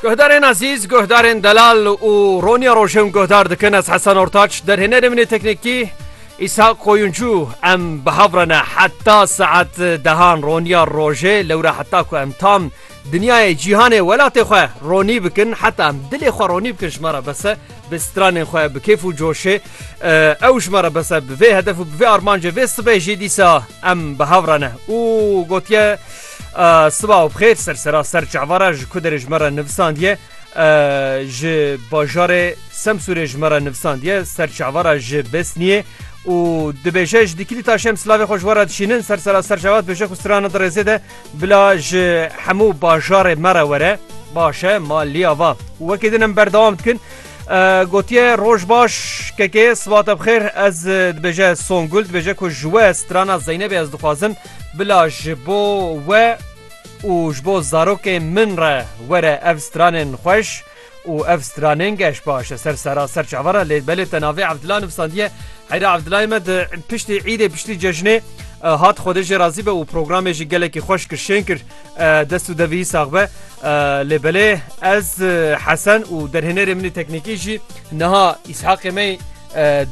Guhdarên Azîz, guhdarên Delal û Roniya Rojim guhdar dikin ez Hesen Ortaç derhênerê min ê teknîkî Îshak Koyuncû em bi hev re ne heta saet dehan Roniya Rojê lewre heta ku em tam dinyayê cîhanê welatê xwe ronî bikin heta em dilê xwe ronî bikin ji me re bese bi stranên xwe bi kêf û coşê ew ji me re bese bi vê hedef û bi vê armancê vê sibê jî dîsa em bi hev re ne û gotiye Siba û bixêr sersera ser çavara ji ku derê ji me re nivisandiye ji bajarê Semsûrê ji me re nivisandiye ser çavara ji Besniyê û dibêje ji dikilî ta şem silavê xwe ji we re dişînin sersera ser çavat bêje ku strana dirêzê de bila ji hemû bajarê me re were baş e ma liya va wekê din em berdewam dikin. Gotiye roj baş kekê sibata bixêr ez dibêje Songul dibêje ku ji we strana Zeynebê ez dixwazim Bila ji bo we û ji bo zarokên min re were ev stranên xweş û ev stranên geş baş e ser seraser çavara lê belê te navê Evdila nivîsandiye heyra Evdilayê me di piştî îdê piştî cejnê hat xwedê jê razî be û programê jî gelekî xweş kir şên kir dest û devî sax be lê belê ez hesen û derhênerê minî teknîkî jî niha îshaqê me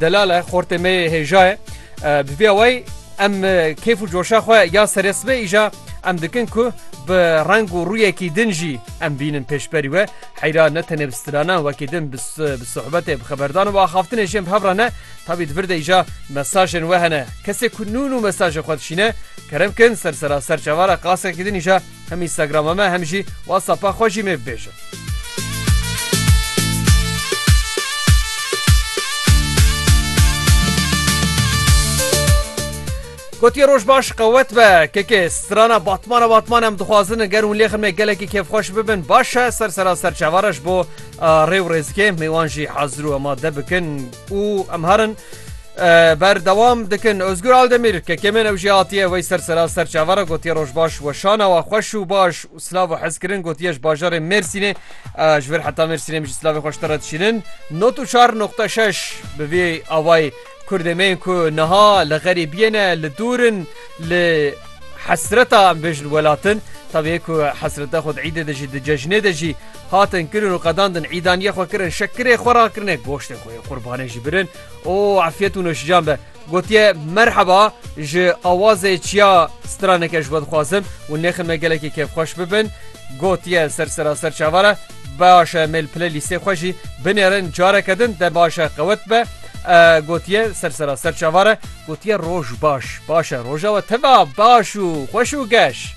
delal e xortê me hêja ye Bi vê awayî em kêf û coşa xwe ya serê sibê îja em dikin ku bi reng û rûyekî din jî em bînin pêşberî we heyra ne tenê bi stranan wekî din bi sohbetê bi xeberdan û axaftinê jê bi hev re ne tabî di vir de îja mesajên we hene kesê ku nûn û mesajê xwe dişîne kerem kin ser seraser çavara qasekî din îja Hem Instagrama me hem jî WhatsAppa xwe jî mêv bêje. Gotiye roj baş qewet be kekê strana batmana batman em dixwazin ger hûn lê xirmê gelekî kêfxweş bibin baş e ser sera ser çavara ji bo rê û rêzikê mêwan jî hazir û amade bikin û em herin Berdewam dikin Ozgur Aldemîr kekemên ew jî hatiye wey ser sera ser çavara gotiye rojbaş weşana wa xweş û baş û silav û hezkirin gotiye ji bajarê Mêrsînê ji vir heta Mêrsînê ji silavê xweştir re dişînin not û çar noqte şeş bi vê awayê Kurdê me yên ku niha li xerîbiyê ne li dûrin li hesreta em bêjin welatin tevê ku hesreta xwe îdê de jî di cejnê de jî hatin kirin û qedandin îdaniye xwe kirin şekirê xwe rakirine goştê xwe qurbanê jî birin û efyet û noşijan be. Gotiye merheba ji awazê çiya straneke ji we dixwazim û nêxin me gelekî kêfxweş bibin. Gotiye ser seraser çavare baş e mêl pile lîstê xwe jî binêrin careke din te baş e qewet be. Gotiye ser seraser çavare gotiye roj baş baş e roja we teva baş û xweş û geş.